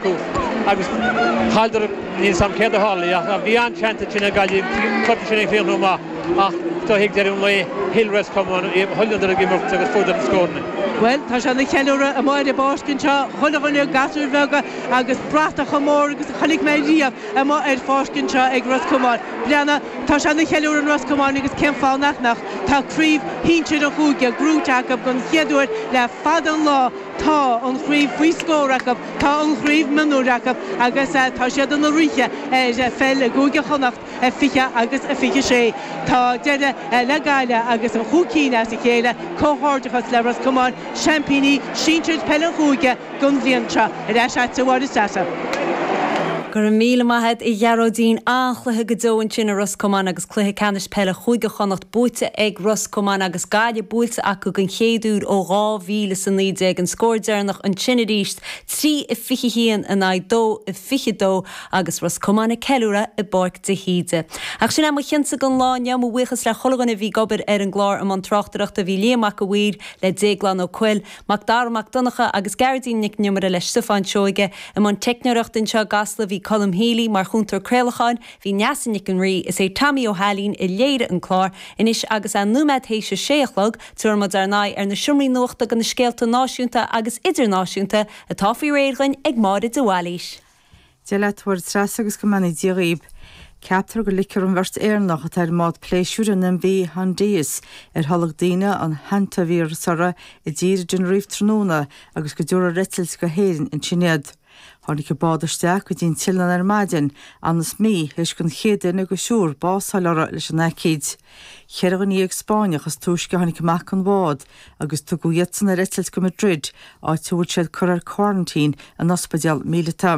Agus Calder, níl 'fhios a'm céard a tharlaigh ach bhí an-seans ag Tine Gaillimh, chuirfeadh sin ag chríochnú maith ach tá's a'd ag deireadh an lae, thuill Ros Comáin é, thuilleadar ag imirt agus fuaireadar na scóranna. Bhuel, tá sé ina cheiliúradh amuigh ar an bpáirc anseo, chuile dhuine, gasúir bheaga agus bratach chomh mór agus a chonaic mé riamh amuigh ar an bpáirc anseo ag Ros Comáin. Breanna, tá sé ina cheiliúradh in Ros Comáin agus cén fáth nach mbeadh, tá craobh shinsir an chúige, gnóite, acu don chéad uair le fada an lá, tá an chraobh faoi scór acu. Tá an chraobh mionúir acu agus tá siad ina ríthe ar pheil i gCúige Chonnacht, a 20 agus a 26. Tá deireadh le Gaillimh agus an chúig cinn as a chéile. Comhghairdeachas le Ros Comáin, seaimpíní sinsir peile an chúige don bhliain seo. Ar ais a'dsa a Mháire Treasa. Go raibh míle maith a'd a Ghearóidín, an-chluiche go deo ansin i Ros Comáin agus. Cluiche Ceannais Peile Chúige Chonnacht buaite ag Ros Comáin agus Gaillimh buailte acu den chéad uair ó 2000 is 19, an scór deireanach ansin arís, 3-21 in aghaidh 2-22 agus Ros Comáin ag ceiliúradh i bPáirc de hÍde. Ach sin é mo chionsa don lá inniu, mo bhuíochas le chuile dhuine a bhí ag obair ar an gclár. I mbun tráchtaireachta bhí Liam Mac a' Mhaoir le Déaglán Ó Cuill, Mac Dara Mac Donncha agus Gearóidín Nic an Iomaire le Stiofán Seoige. I mbun teicneoireachta anseo i gCasla bhí Colm Healy, mar chúntóir craolacháin, Bhí Neasa Nic an Rí is é Tommy Ó hAilín a léirigh an clár anois agus é nóiméad théis a sé a chlog, tabharfaidh muid ár n-aghaidh ar na seomraí nuachta go na scéalta náisiúnta agus idirnáisiúnta atá faoi réir againn ag Máire de Bhailís. Dia leat Mháire Treasa agus go mbeannaí Dia dhaoib. Ceaptar go ligfear an bheirt Éireannach atá ar an mbád pléisiúir an MV Hondius ar tholg daoine an hantaivíreas uirthi i dtír i dTenerife tráthnóna agus go dtabharfar ar eitilt go hÉirinn ansin iad. Tháinig an bád isteach go dtí an t-oileán ar maidin, ionann's mí théis don chéad duine de thriúr bás a fháil uirthi leis an aicíd. Cheithre dhuine dhéag Spáinneach is túisce a tháinig amac an bhád agus tugadh iadsan ar eitilt go Madrid, áit a bhfuil siad curtha ar quarantine in ospidéal míleata.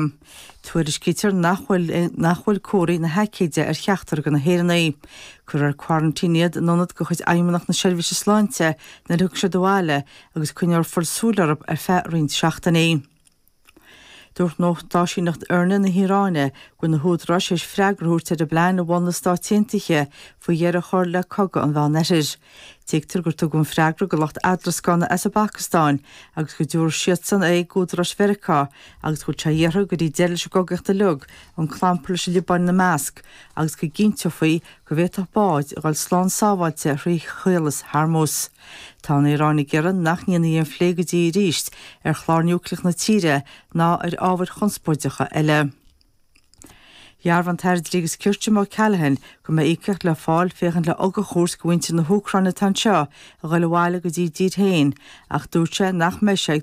Tuairiscítear nach bhfuil comharthaí na haicíde ar cheachtar de na hÉireannaigh. Cuirfear ar quarantine iad in ionad de chuid Fheidhmeannacht na Seirbhíse Sláinte nuair a thiocfaidh siad abhaile agus coinneofar súil orthu ar feadh roinnt seachtainí. Dúirt nuachtáisíneacht IRNA na hIaráine go bhfuil na húdaráis tar éis freagra a thabhairt ar an bplean a mhol na Stáit Aontaithe faoi dheireadh a chur le cogadh an Mheánoirthir. Tuigtear gur tugadh an freagra do lucht eadarascána as an bPacastáin agus go dtabharfaidh siadsan é d'údaráis Mheiriceá agus go bhfuil sé iarrtha go dtí deireadh leis an gcogaíocht uilig, an clampar leis an Liobáin ina measc, agus go gcinnteofaí go bhféadfadh báid a dhul slán sábháilte thrí Chaolas Hormuz. Tá an Iaráin ag iarraidh nach ndéanfaí aon phlé go dtí arís ar chlár núicleach na tíre ná ar ábhair chonspóideacha eile. Dhearbhaigh an tAire Dlí agus Cirt, Jim O'Callaghan, go mbeidh íocaíocht le fáil féachaint le ugach a thabhairt do mhuintir na hÚcráine atá anseo a ghoil abhaile go dtí a dtír féin ach dúirt sé nach mbeidh sé ag